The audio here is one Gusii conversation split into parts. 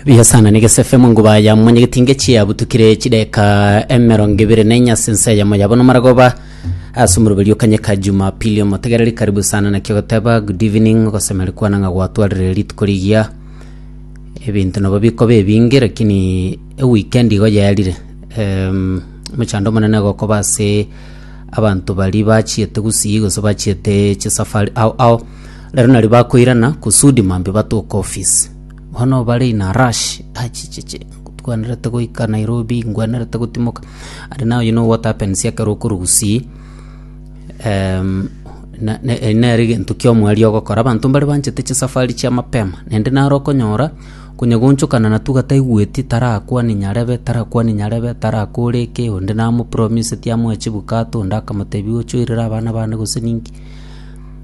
bihasana negesefe monguba ya mwenye getinge chiabutukire chideka emerongo ibere na inyasi nse yamo yabo nomaragoba ase omoroberi okanyeka jumapili omotegereri karibu sana nakio goteba good evening ogosemeri kwana ng'a gwatwarire rituko rigiya ebinto nabo bikoba ebinge lakini eweekend igo yaerire um, mochando omonene gokoba ase abanto bari bachiete gusii gose bachiete chisafari ao ao Rero nario bakoirana kusudi mambia batoke office. Bono bare in a rush, achichichi, ntwenerete goika Nairobi, ngwenerete gotimoka. And now you know what happens ekero okorwa gusii, em, na- na- eri nere egento kia omweri ogokora. Abanto mbare banchete chisafari chia mapema, naende naro okonyora konya goonchokana na tuga taigweti, tarakwane nyarebe, tarakwane nyarebe, tarakore eke, onde namopromiseti amoe chibukato, onde akamotebia oche oirere abana bane gose ninki.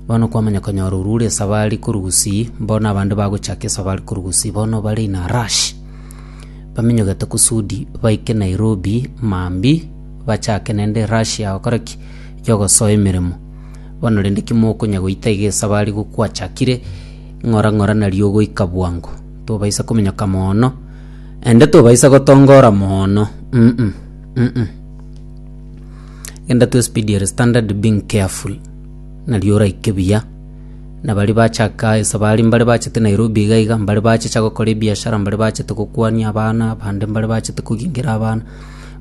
Bono kwamanya konyora orua ore esabari korwa gusii, bono abande bagochaka esabari korwa gusii bono bare in a rush. Baminyogete kusudi baike Nairobi mambia, bachake naende rush ya gokora ki? Ya ogosoa emeremo. Bono rende ki mokonya goita iga esabari igo kwachakire, ng'ora ng'ora nario ogoika bwango. Tobaisa kominyoka moono, naende tobaisa gotongora moono uh-uh, uh-uh. Genda to a speedy and standard being careful. na riorai kebuya. Na baria bachaka esa baria mbare bachete Nairobi iga iga, mbare bachicha gokora ebiashara, mbare bachete gokwania abana, bande mbare bachete kogingera abana,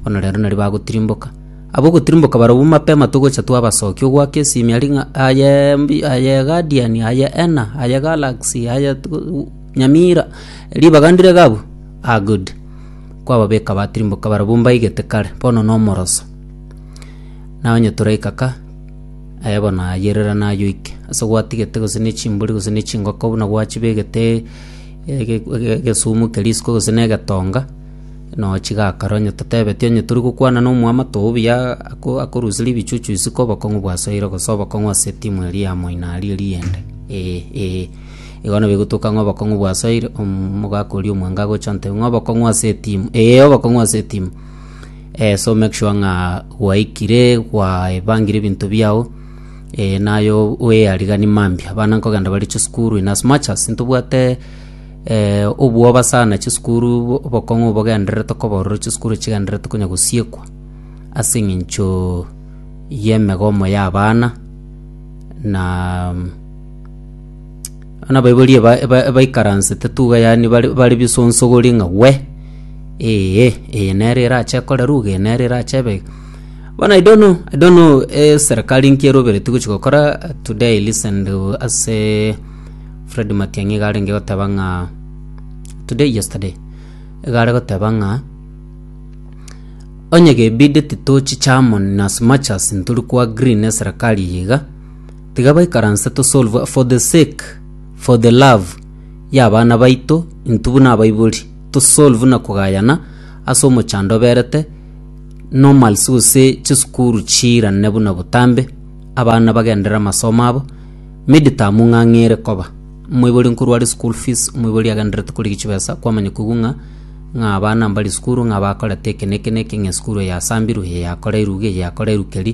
bono rero nario bagotirimboka. Abwo ogotirimboka barobwo mapema togocha twabasokia, ogwaka esimi aria ng'a aye mbi aye Guardian, aye Ena, aye Galaxy, aye tug- Nyamira, ribaga ndire iga abwo? Ah good. Kwababeka batirimboka barobwo mbaigete kare, bono nomoroso. Nonye toraika ka. Aye bono ayerera nayoike, ase gwatigete gose ne chimbori gose ne chingoko buna gwachibegete ege- ege- egesumu keria isiko gose na egetonga, noo chigakare onye totebeti onye tori gokwana na omwamato oo buya ako- akorusia ribichuchu isiko obokong'u bwasoire gose obokong'u ase etimu eria ya moino aria eriyende ee ee. Igo nabo egotueka ng'a obokong'u bwasoire, omogaka oria omwanga agocha ante ng'a obokong'u ase etimu, ee obokong'u ase etimu. Eh, so make sure ng'a gwaikire gwaebangire ebinto biao eh, naye o- oeariganie mambia abana nkogenda bare chisukuru in as much as ntobwate eh, obwoba sana chisukuru bo- obokong'u bogendererete koba ororo chisukuru chigendererete konya gosiekwa ase eng'encho y'emegomo y'abana na mm, Abana baiborie ba- ba- baikaransete tuga yaani bare bare bisonsogori ng'a we eeh eye nere erache ekore ruga eye nere erache ebe iga. Bono I don't know I don't know eserikari nki eroberetie gochi gokora today I listened ase Fred Matiang'i iga arenge goteba ng'a today yesterday iga are goteba ng'a onye gebideti tochiche amo in as much as ntori ko agree neserikari eye iga Tiga baikaranse tosolve for the sake, for the love, y'abana baito intwe buna abaibori, tosolve na kogayana ase omochando oberete normals gose chisukuru chiirane buna botambe, abana bagenderere amasomo abo, midterm ng'ang'ere koba, omoibori nkorwa are school fees, omoibori agendererete korigia chibesa, kwamanya koigwa ng'a ng'a abana mbari sukuru, ng'a bakorete eke na eke na eke, ng'a esukuru eye yasambirwe, eye yakoreirwe iga, eye yakoreirwe keri.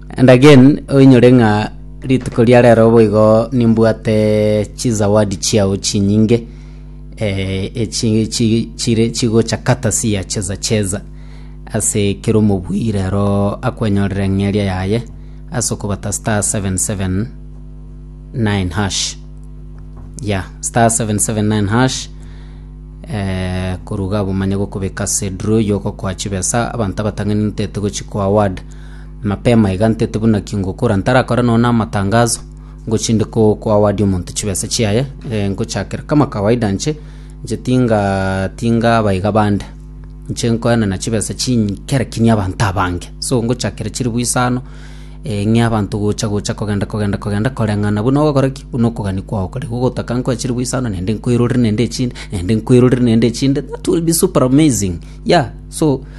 And again, oinyore ng'a rituko ria rero boigo nimbwate chizawadi chiao chinyinge eh, echi chi- chire chigocha kata siyacheza cheza ase kera omobui rero akwenyorere eng'eria yaye ase okobata star 779 hash ya star 779 hash eh, koruga abwo manye gokobeka ase draw yogokoa chibesa abanto abatang'ani ntete gochikoa award Mapema iga ntete buna ki ngokora ntarakore nonya na amatangazo ngochinde ko koaward omonto chibesa chiaye eh, ngochakera kama kawaida nche nche tinga tinga abaiga bande nche nkoenana chibesa chinyi kera kinya abanto abange so ngochakera chiribu isano eh, ng'e abanto gocha gocha kogenda kogenda kogenda koreng'ana buna ogokora ki buna okogani kwao kore igo ogotaka nkoe chiribu isano naende nkoirorere naende echinde naende nkoirorere naende echinde that will be super amazing yeah so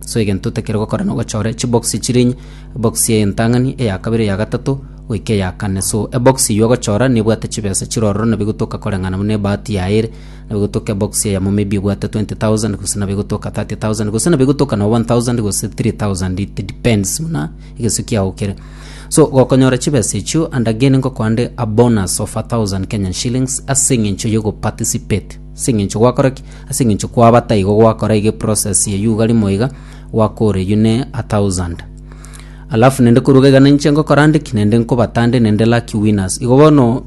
So egento otakire gokora nogochora echibokisi chire enye, ebokisi ya entang'ani, eya kabere, eya gatato, goika eya kane. So ebokisi eyio ogochora nebwate chibesa chire ororo nabo egotoka koreng'ana buna ebahati yaye ere. Nabo egotoka ebokisi eyemo maybe ebwate 20,000 gose nabo egotoka 30,000 gose nabo egotoka noo 1,000 gose 3,000 it depends buna egesu kiago kere. So gokonyora chibesa echio and again ngokoande a bonus of 1,000 Kenyan shillings ase eng'encho ya ogo participate, ase eng'encho gwakora ki? Ase engencho kwabata igo gwakora iga eprocess ya yuga rimo iga gwakore you ne a thousand. Alafu nende koruga iga ninche ngokora ndiki nende nkobata nde nende lucky winners. Igo bono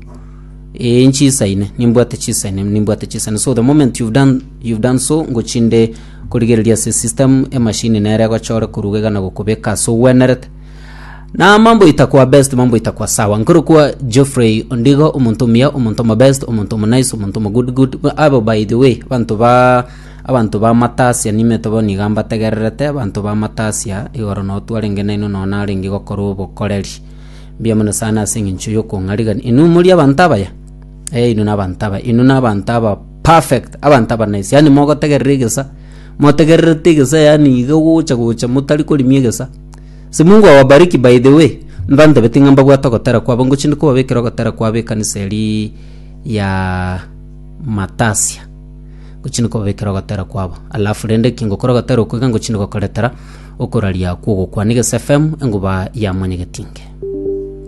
ee nchisaine nimbwate chisaine nimbwate chisaine so the moment you've done you've done so ngochinde korigereria ase system emachine nere egochore koruga iga na gokobeka ase ogwenerete Na mambo itakwa best mambo itakwa sawa nkorokwa Geoffrey Ondigo omonto omuya omonto omo best omonto omo nice omonto omo good good Ba- abo by the way abanto ba abanto ba matasia nimete bono iga mbategererete abanto ba matasia igoro no twarenge naino no narenge gokora obokoreri mbuya mono sana ase eng'encho yokong'arigani inwe mori abanto abaya eh inwe nabanto abaya inwe nabanto aba perfect abanto aba nice yaani mogotegerera egesa motegererete egesa yaani iga gocha gocha motari korimia egesa Si Mungu awabariki by the way. Ntantabeti ng'a mbabwate ogotera kwabo ngochia inde kobabekera ogotera kwabo ekanisa eria ya Matasia. Ngochia inde kobabekera ogotera kwabo. Alafu rende eki ngokora ogotera okwo iga ngochia inde gokoretera okoraria kw'ogokwana egese FM eng'uba ya mwanyagetinge.